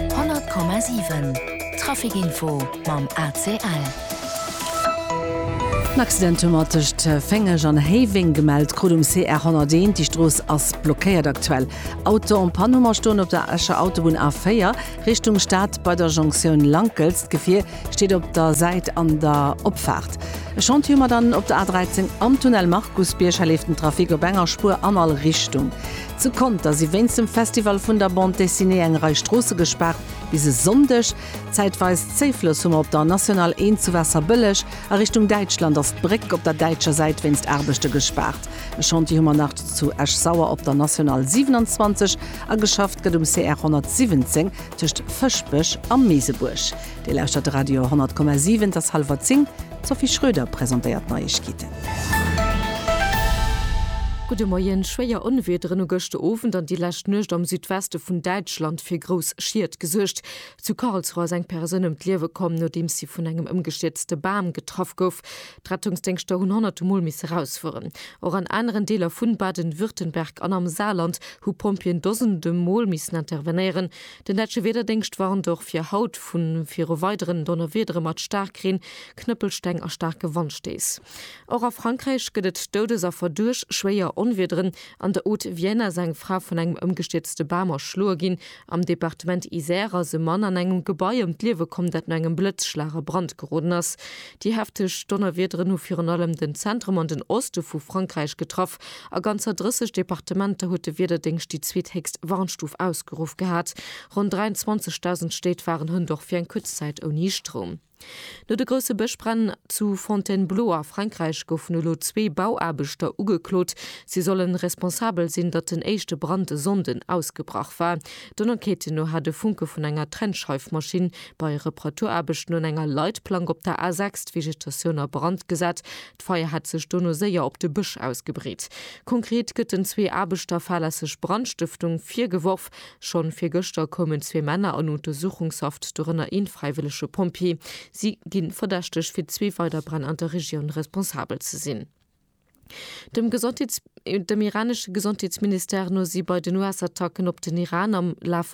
100,7 Trafic Info mam ACL. En Accident hu mer tëscht Féngeg an Héiweng gemellt, krut um CR 101. Déi Strooss ass blockéiert aktuell. Auto en panne hu mer stoen op der Escher Autobunn A4 Richtung Stad bei der Jonktioun Lankels. D'Gefier steet op der Säit an der Opfaart. E Chantier hu mer dann op der A13 am Tunnel Markusbierg. Hei leeft den Trafic op enger Spuer an all Richtung. Zu Conter si wéinst dem Festival vun der Bande Dessinée eng Rei Stroosse gespaart, bis e Sonndeg. Zäitweis Zéiflëss hu mer op der National 1 zu Waasserbëlleg. A Richtung Däitschland ass d'Bréck op der däitscher Säit wéinst Aarbechte gespaart. E Chantier hu mer nach zu Esch-Sauer op der National 27 a geschafft gëtt um CR 117 tëscht Fëschbech a Meesebuerg. Dir lauschtert de Radio 10,7, et ass hallwer 10, d'Sophie Schröder presentéiert d'Neiegkeeten. Gudde Moien, Schwéier Onwiederen hu gëschter Owend an déi lescht Nuecht am Südweste vun Däitschland fir grouss Schied gesuergt. Zu Karlsruhe ass eng Persoun ëm d'Liewe komm, nodeems si vun engem ëmgestierzte Bam getraff gouf. D'Rettungsdéngschter hunn honnerte Mol misse rausfueren. Och an aneren Deeler vu Baden-Württemberg an am Saarland hu Pompjeeën Dosende Mol missen intervenéieren. Den däitsche Wiederdéngscht warnt och fir haut vu viru weideren Donnerwiedere mat Staarkreen, Knëppelsteng a staarke Wandstéiss. Och a Frankräich gëtt et Doudesaffer duerch schwéier Onwiederen. An de Haute-Vienne ass eng Fra vun engem ëmgestierzte Bam erschloe ginn. Am Departement Isère ass e Mann an engem Gebai ëm d'Liewe komm, dat no engem Blëtzschlag a Brand geroden ass. Déi hefteg Donnerwiederen hu virun allem den Zentrum an den Oste vu Frankräich getraff. A ganzer 30 Departementer huet de Wiederdéngscht déi zweethéchst Warnstuf ausgeruff gehat. Ronn 23.000 Stéit waren hunn dach fir eng kuerz Zäit ouni Stroum. No de grousse Bëschbränn zu Fontainebleau a Frankräich goufen elo zwee Bauaarbechter ugeklot. Si sollen responsabel sinn, datt den éischte Brand e Sonnden ausgebrach war. Den Enquêten no hat e Funke vun enger Trennscheifmaschinn bei Reparaturaarbechten un enger Leitplank op der A6 d'Vegetatioun a Brand gesat. D'Feier hätt sech dono séier op de Bësch ausgebreet. Konkret gëtt den zwee Aarbechter fahrlässeg Brandstëftung virgeworf. Schonn virgëschter koumen zwee Männer an Untersuchungshaft, dorënner een fräiwëllege Pompjee. Si gi verdächteg fir zwee weider Bränn an der Regioun responsabel ze sinn. Dem iranesche Gesondheetsministère no si bei den US-Attacken op den Iran am Laf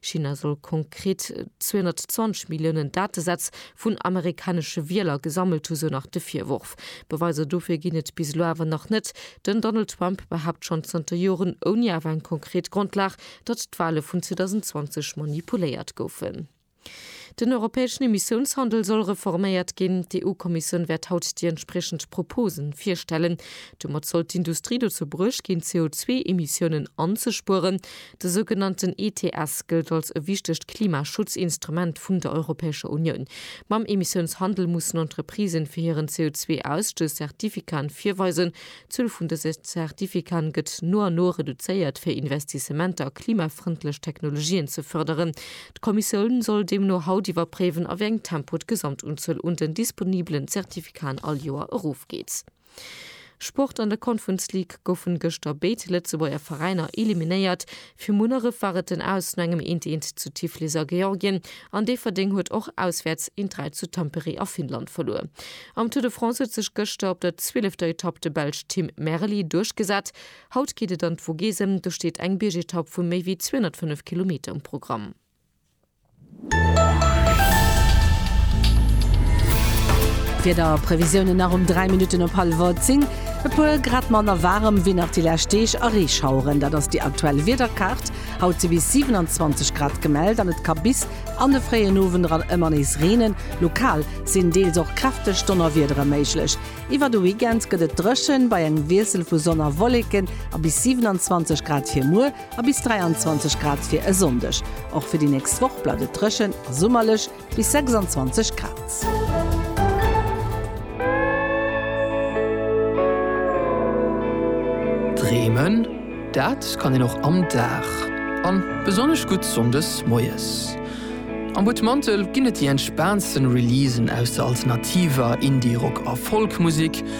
China soll konkret 220 Milliounen Datesätz vun amerikanesche Wieler gesammelt hu, sou nach de Virworf. Beweiser dofir ginn et bis elo awer nach net. Den Donald Trump behaapt schonn zanter Joren, ouni awer eng konkret Grondlag, datt d'Wale vun 2020 manipuléiert goufen. Den europäeschen Emissiounshandel soll reforméiert ginn. D'EU-Kommissioun wäert haut déi entspriechend Propose virstellen. Domat soll d'Industrie dozou bruecht ginn, CO2-Emissiounen anzespueren. De sougenannten ETS gëllt als e wichtegt Klimaschutzinstrument vun der Europäescher Unioun. Mam Emissiounshandel mussen Entreprisen fir hiren CO2-Ausstouss Zertifikaten virweisen. D'Zuel vun dëse Zertifikaten gëtt no an no reduzéiert, fir Investissementer a klimafrëndlech Technologien ze fërderen. D'Kommissioun soll deemno haut iwwerpréiwen, a wéi engem Tempo d'Gesamtunzuel un den disponibelen Zertifikaten all Joer erofgeet. Sport, An der Conference League goufen gëschter béid Lëtzebuerger Veräiner eliminéiert. Fir Munneref war et den Aus no engem Eent-Eent zu Tiflis a Georgien an Déifferdeng huet och auswäerts een 3 zu Tampere a Finnland verluer. Am Tour de France huet sech gëschter op der zwielefter Etapp de Belsch Tim Merli duerchgesat. Haut geet et an d'Vogesen, do steet eng Biergetapp vu méi wéi 205 Kilometer um Programm. Wiederprevisiounen nach um 3 Minutten op hallwer 10. E puer Grad manner waarem wéi nach déi lescht Deeg a Reeschaueren. Dat ass déi aktuell Wiederkaart. Haut si bis 27 Grad gemellt an et ka bis an de fréien Owend eran ëmmer nees reenen. Lokal sinn deels och kräfteg Donnerwiedere méiglech. Iwwer de Weekend gëtt et dréchen, bei engem Wiessel vu Sonn a Wolleken a bis 27 Grad fir muer. a bis 23 Grad fir e Sonndeg. Och fir déi nächst Woch bleift et dréchen a summerlech, bis 26 Grad. Dreemen, dat kann een och am Dag, a besonnesch gutt sonndes moies. Am Butmantel ginn et déi entspaantste Releasen aus der alternativer, Indie-, Rock a Folk-Musek.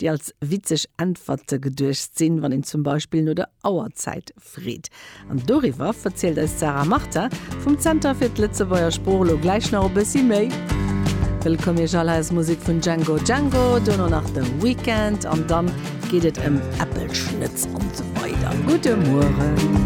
déi als witzeg Äntwerte geduecht sinn, wann een zum Beispill no der Auerzäit freet. An doriwwer verzielt eis d'Sarah Martin vum Zenter fir d'Lëtzebuerger Sprooch elo gläich nach e bëssi méi. Wëllkomm Iech alleréiers, Musek vun Django Django, duerno nach The Weeknd an dann geet et ëm Äppelschnëtz an esou weider. Gudde Mueren.